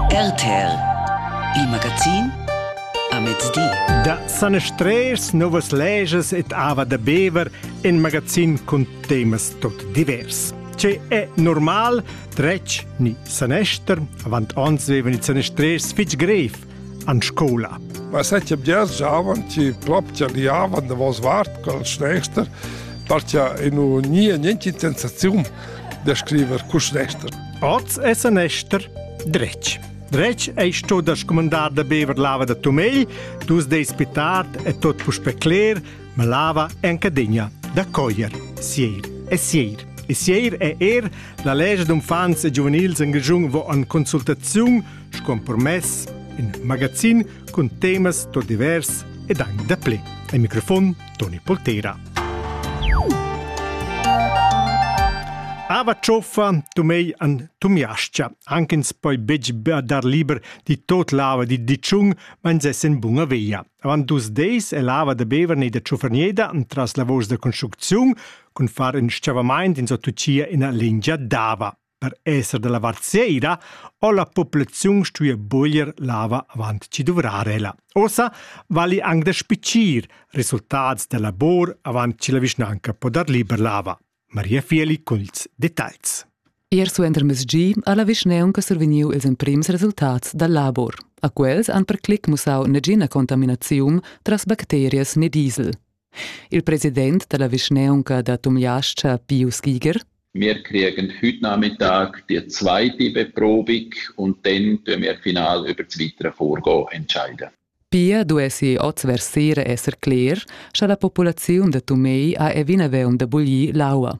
RTL Il magazin a mezdi. Da sanestreers, novas leges et ava da bever in magazin cun temas tot divers. Ce è normal, dretg ni sanester? Avant ons vevan ils sanestreers fitg grev. an scoula. Ma setje bgers giavan, ci ploptia liavan da vos vart col schnester, partia inu nie nienti sensazium da scriver cu schnester. Oz è sanester dretg. Dretg ei sto da scomandar da bever lava da tomei, dus deis pitat e tot puspe cler, ma lava è anche degna da coglier. Sieir e sieir. E sieir è er la lege d'unfants e giuvenils en giujung vo an consultaziun sco permess in magazin cun temas tot divers ed anche da play. Al microfon Toni Poltera. Ava cioffa tu mei an tumiascia, anche ins poi betg dar liber di tot lava di diciun, ma ins essen bunga veia. Avant dus deis è lava da bever nei da cioffernieda tras lavors da construcziun, cun far in sciavamaint in so tucia ina lingia d'ava. Per esser dalla vart seira ho la populaziun stuia buglier lava avant chi duvrar ella. Ossa vali anc da spicir resultats da labor avant chi la vischnanca po dar liber lava. Maria Fieli culs detalls. Ier suenter mesgi ha la vischnaunca survegniu ils emprims resultats dal labor. A quels han per clic mussau negina contaminaziun tras bacterias né diesel. Il president dalla vischnaunca da Tumliascha, Pius Giger, Wir kriegen heute Nachmittag die zweite Beprobung und dann tun wir final über das weitere Vorgehen entscheiden. Pia duessi oz ver sera esser cler, scha la populaziun da Tumei ha evina veun da buglir l'aua.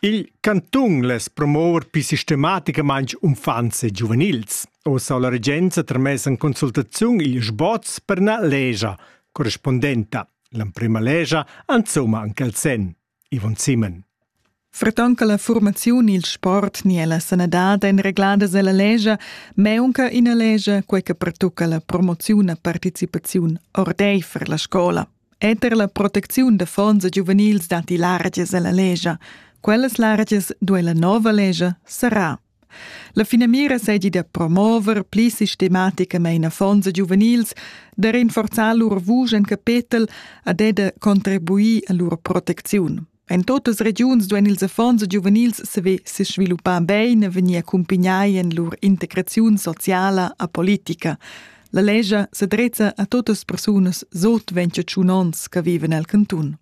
Il cantun less promover pli sistematicamain uffants e giuvenils. Oz ha la regenza tramess en consultaziun il sboz per ina lescha correspondenta. L'emprima lescha insomma anche il sen. Ivon Simon. Fraton che la formaziun, il sport ni la sanadad ein regladas ella lescha, meunca ina lescha quei che pertucca la promoziun e participaziun ordeifer la scola. Eter la protecziun da fons giuvenils datti largias ella legia. Quellas largias duai la nova legia serrar. La finamira seigi da promover pli sistematicamain affons giuvenils, da rinforzar lur vusch en capetel ad e da contribuir a lur protecziun. En totas regiuns duein ils affons e giuvenils saver sesviluppar bein e vegnir accumpagnai en lur integraziun sociala a politica. La lescha sedrezza a totas persunas sot 28 onns che viven el cantun.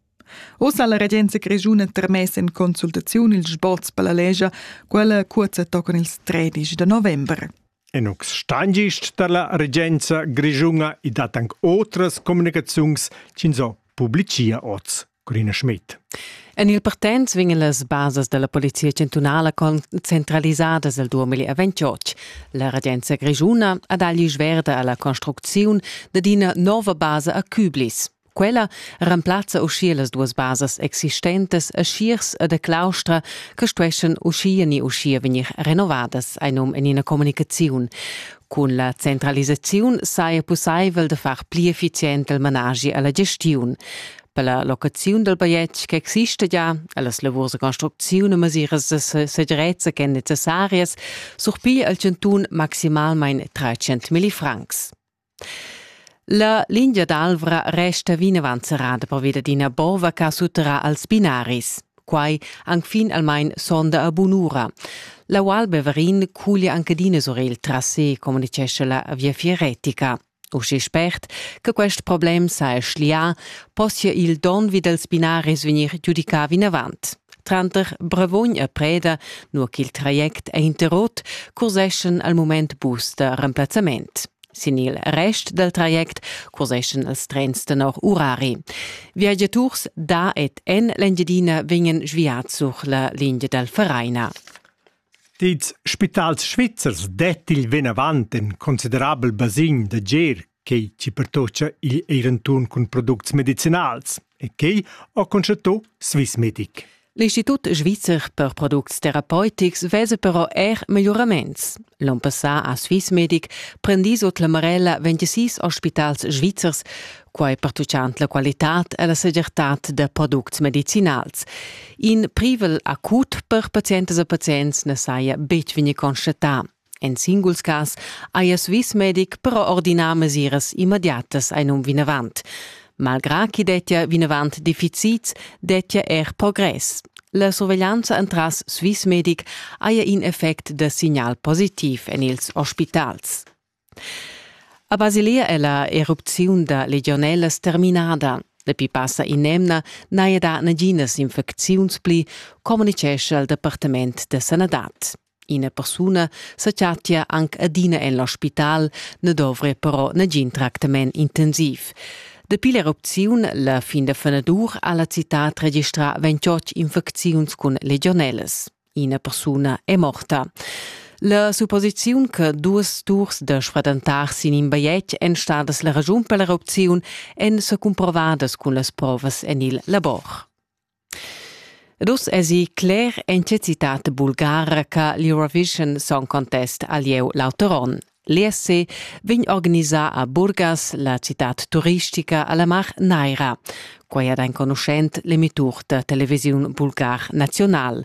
Ossa ha la regenza grischuna termess en consultaziun il sboz per la lescha, quella curza tocan ils 13 de november. En uc stangist dalla regenza grischunga i dat anc otras communicaziuns ch'ins ho publicia oz, Corina Schmidt. En il partenz vegnan las basas dalla polizia chantunala concentralisadas el 2028. La regenza grischuna ha dagli sverda alla construcziun dad ina nova basa a Küblis. Quella remplazza uschia las duas basas existentas a Schiers e da Claustra che stuessan uschia ni uschia vegnir renovadas, ein num en ina communicaziun. Cun la centralisaziun saja pussaivel da far pli effizient il managi alla gestiun. Per la locaziun del bigliet che exista già, e las lavurs de construcziun e mesiras de segirezza ch'en necessarias, surpiglia il Cantun maximalmein 300.000 francs. La lingia d'Alvra resta vinavant serrada pervi dad ina bova che sutterrà als binaris. Quai anc fin almain sonda a bun'ura. La Val Beverin cuglia anche d'ina surel tras se, communitgescha la Viafier Retica. Usche spert che quest problem sa è schlià, possia il don vi dals binaris vegnir giudicà vinavant. Tranter Bravogn e Preda, nur ch'il traject è interrot, curseschan al mument bus da remplazzament. Sin il rest dal traject curseschan els trens tenor urari. Viagiaturs da ed en l'Engiadina vegnan sviads sur la linea dal Vereina. Dits spitals svizzers det il vinavant in considerabel basin da gir quei chi pertocca igl eir inturn cun products medicinals e quei ho constatto Swissmedic. L'Institut svizzer per products terapeutics vese però er miglioraments. L'on passà ha Swissmedic prendì sut la marella 26 ospitals svizzers, quai pertuchant la qualitad e la segirtad da products medicinals. In privel acut per pazientas e pazients na saja betg vegnì constatà. In singuls cas hajas vis medic però ordinà mesiras immediatas ein um vinavant. Malgrà ch'i dettia vinavant deficits, dettia er progress. La surveglianza entras Swiss Medic haja in effect da signal positiv en ils ospitals. A Basilea è la erupziun da legionellas terminada. La pipassa in'emna n'haja dà naginas infecziuns pli, communicescha il Departament da sanadad. Ina persuna sa chattia anc adina en l'ospital, ne dovre però nagin tractament intensiv. Dapi l'erupziun la fin da fenadur ha la citad registrà 28 infecziuns cun legionelas. Ina persuna è morta. La supposiziun che duas turs da sfradantar sin in bajetg èn stadas la raschun per l'erupziun èn sa cumprovadas cun las provas en il labor. Ed uss èsi cler en tge citad bulgara che l'Eurovision Song Contest ha lieu l'auter onn. L'ESC vegn organisà a Burgas, la citad turistica alla Mar Naira. Quai ha enconuschent l'emitur da televisiun bulgar National.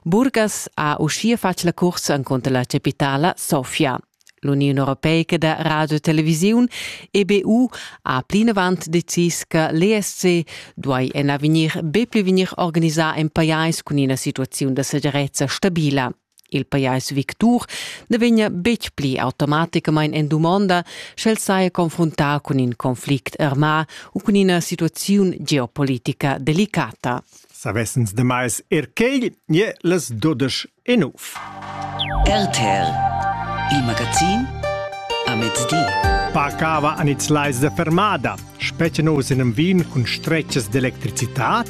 Burgas ha uschia fatg la cursa encunter la capitala Sofia. L'Uniun europeica da radiotelevisiun EBU ha plinavant decis che l'ESC duai en avegnir be pli vegnir organisà en pajais cun ina situaziun da segirezza stabila. Il pajais victur na vegnia betg pli automaticamain en dumonda, sch'el saja confruntà cun in conflict armà u cun ina situaziun geopolitica delicata. Savessens demais er quai, ie las dudesch e nov. RTL, il magazin a mezdi. Parcava an its lais da fermada, specie nos in vin cun stretches d'electricitat,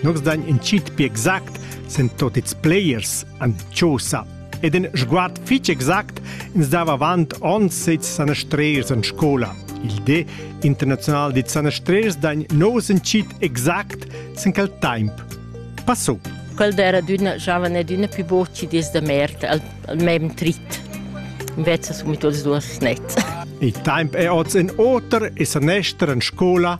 nos dain in cit pi exact sen tot its players an Chosa ed in sguard fitg exact ins dava avant ons sez sanastreers an scola. Il De internazional dit sanastreers dain nos in cit exact sen quel temp Passò. Quel d'era d'una giovane ed una più voci des da merda al, al mem trit. Invece sono tutti due snets. Il temp è oz in oter e sanestra in scola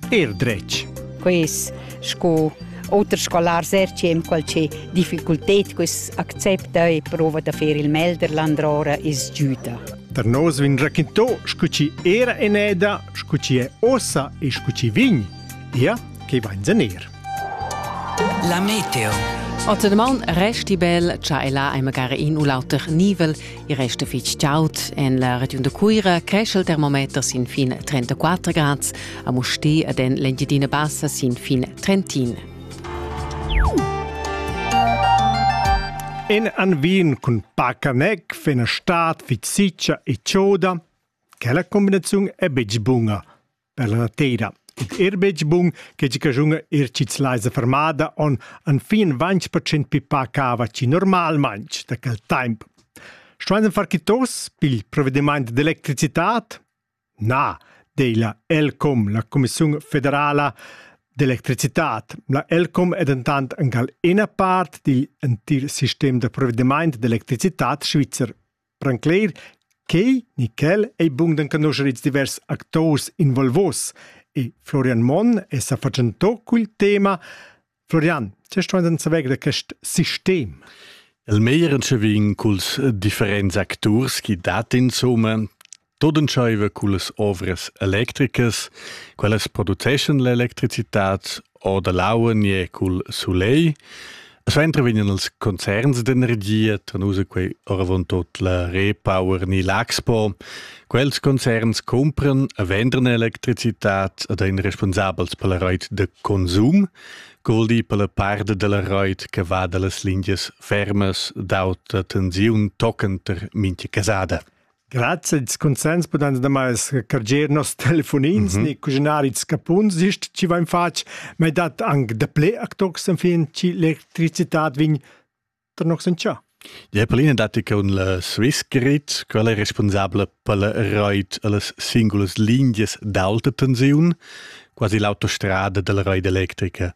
er dretg. Quest sco oter scolar sercem qualche difficultät quest accepta e prova da fer il Melderland ora is giuda. Da nos vin raquintò scu ci era eneda, scu ci è ossa e scu ci vin. Ia che vain zener. La meteo. Ottenmaun resti bel, cha e là ei magari in u l'auter nivel, i resta fitg chaud. En la regiun de Cuira cresce il termometer sin fin 34 grad, a Musti ed en l'Engiadina Bassa sin fin 31. En an Wien cun Pacanec fa una stad viciccia e chioda, che la combinazione è betg bună. per la teira. Ed er betg bun che tgi caschunga er chits laisa fermada on an fin 20% pipa cava ci normalmanc da quel temp. Stueisen far chi tos pil provvediment d'electricitat? Na, deila ELCOM, la Commissione federala d'electricitat. La ELCOM è dentant angal ina part digl entir sistem da provvediment d'electricitat svizzer. Brancler, quei ni quel ei bun d'enconoscher ils divers actors involvos e Florian Monn è sa fatgentò cul tema. Florian, tge stuein ins saver da quest sistem? El meglier en vegn culs differents acturs chi dat insomma Tot entscheiva cullas ovras electricas, quellas produceschan l'electricitat o da l'aua nie cul sulegl. Suenter vegnan els concerns d'energia, tanusa quei oravontut la Repower ni l'Axpo. Quels concerns cumpran e vendran electricitat ad ein responsabels per la reit de consum, goldi per la part della reit che va dallas lingias fermas d'auta tensiun toccant mintga casada. Grazie, ils consens pudan damai carger nos telefonins mm -hmm. ni cuginari scapuns ist ci vain fatg, ma dat anche da ple actox en fin ci l'electricitat vin tar nox in cia. Ja, Pauline datti che un la Swiss Grid, quella è responsabile per la reit alles singulas linguas d'alta tensiun, quasi l'autostrada della reit electrica.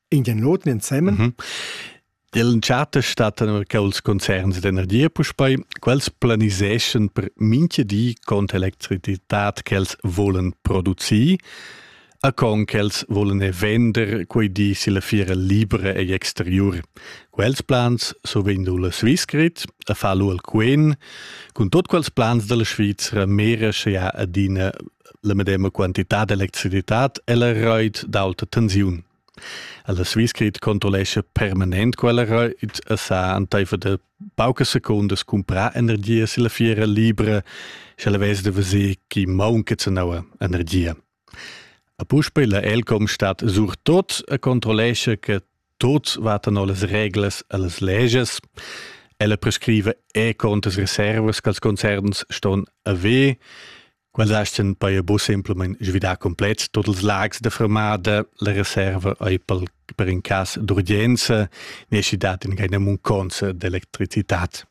in den Noten ensemmen. Mhm. L'entschatta stattan che els concerns d'energia puspei, quels planiseschen per minche di con electricità che els volen producir, a con che els volen vender quei di si la fiera libra e exterior. Quels plans so vendu la Swissgrid, a fallo al Quen, con tot quels plans della Svizzera mera sche ha adina la medema quantitad d'electricitat e la reit d'auta tensiun. La Swissgrid controllescha permanent quella reit e sa anteifer de pauca secundas comprar energia si la fiera libra, se la vez de veser chi maunca cenau energia. A puspei la Elcom stat surtot e controllescha che Tuts vatan las reglas e las leges. Ella prescrive e contas reservas che concerns ston haver. Quels asten poi a bus simplement svidar complet tots els lags de fermada, la reserva ei pel, per in cas d'urgenza, nesci dat in gaina munconza d'electricitat.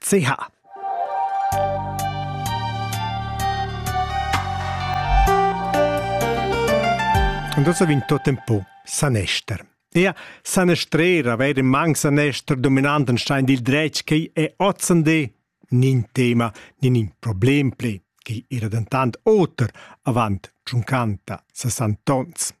CH. Und das ha vinto tempo sanester. Ia sanestrera vere mang sanester dominanten stein dil dretg che è otzende nin tema nin in problem ple che era dentant oter avant 50 60 tons.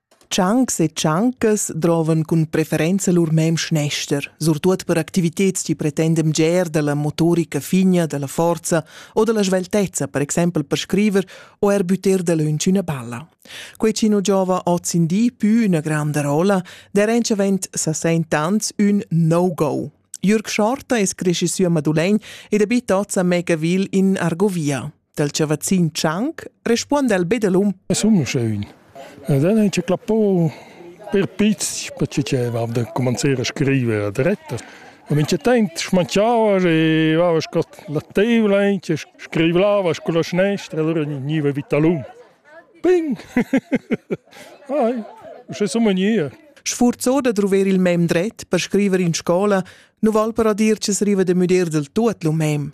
Tschancs e tschancas drovan cun preferenza lur mem schnester, surtut per activitads chi pretendem ger dalla motorica figna, dalla forza o dalla sveltezza, per exempel per scriver o er butter dalöntsch üna balla. Quei chi nu giova hoz in di pü üna granda rolla, der entschavent sa sent ans ün no-go. Jürg Schorta es cresci sü a Madulegn ed abita hoz a Megaville in Argovia. dal chavazzin Tschanc respuonda el be dalum. Sun sche ün. Ed dann hat klappo per pizz, perché diceva da cominciare a scrivere a dretta. Ma wenn ich denkt, schmanchava e va con la tavola e scriveva con la sinistra, allora veniva vita l'um. Bing! Ai, c'è so mania. Sfurzo da trover il mem dret per scrivere in scola, nu val per dir che se riva de müder del tuot lu mem.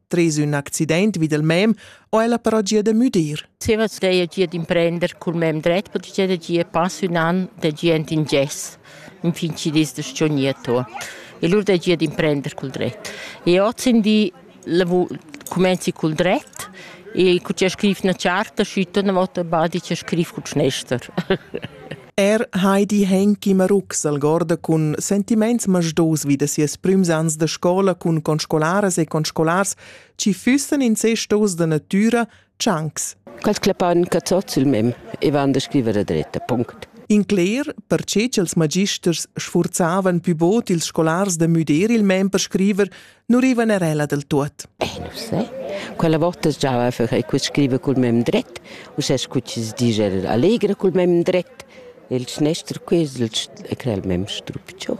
Tres ün accident vid il mem ho ella però gia da müdir. Zieva steja gia d'imprender cul mem dret, perché gia da gia pass ün an da gent in gess, in fin ci dis da sciogniato. E lur da gia d'imprender cul dret. E oz in di comenzi cul dret e cu c'è scrif na charta, schütta una volta badi c'è scrif cul schnester. Er Heidi Henki Marux algorda cun sentiments masdos vi da sias prüms ans da scola cun conscolaras e conscolars chi füssan incestos da natüra tschancs. Quels clapan che tots il mem e van da scriver a dretta, punct. In cler, perche ch'els magisters sfurzavan pü bod ils scolars da müder il mem per scriver, nu rivan er ella del tuot. Eh, non sai. Quella volta stava a fare que scrive col mem dret, u se scucci si dice allegra col mem dret. Il schnestr quis e crel mem strupcio.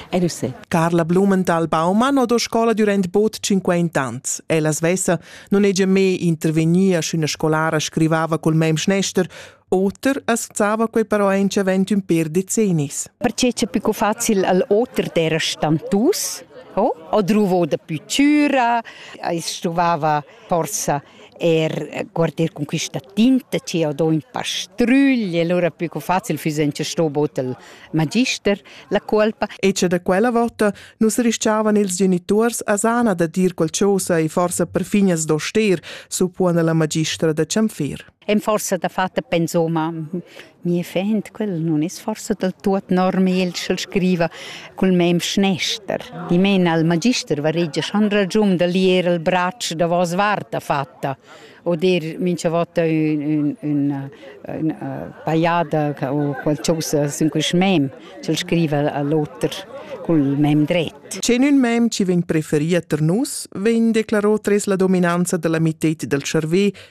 E non sai. Carla Blumenthal Baumann ho do scola durant bod 50 ans. Ella svessa non hegia me intervegnia sch'üna scolara scrivava col mem schnestr Oter as vzava quei però intschevent ün per decennis. Perché c'è più facil al oter d'era stantus? Oh? O druvo da più cura, as trovava forsa er guardar con questa tinta che ho do in pastrugli, allora più facile füs in ce sto bot il magister la colpa. E che da quella volta nus rischiavan ils genitors a sana da dir qualcosa e forse perfin as do ster, suppuona la magistra da Cianfir. E'm forsa dafatta pensoma mia fend, quella nun es forsa dal tuot normal ch'el scriva cul mem schnester. Dimena al magister varegia schon ragiun da lier il bratsch davos vart dafatta o dir mincha vota ün ün üna üna pajada o qualchosa sün quist mem ch'el scriva a l'oter cul mem dret. Che in ün mem chi vegn preferì a tar nus, vegn declaro tres la dominanza da la mitted dal tscharvè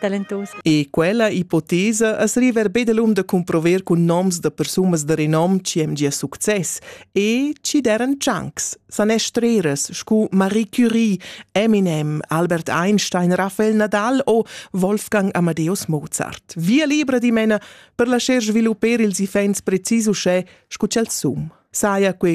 talentos. E quella ipotesa as river be delum da cumprover cun noms da persunas da renom chi hem gia success e chi deren chunks, sanestreras scu Marie Curie, Eminem, Albert Einstein, Raphael Nadal o Wolfgang Amadeus Mozart. Via libra dimena per lascer svilupper ils ifens precis uschè scu ch'el sum. Saja quei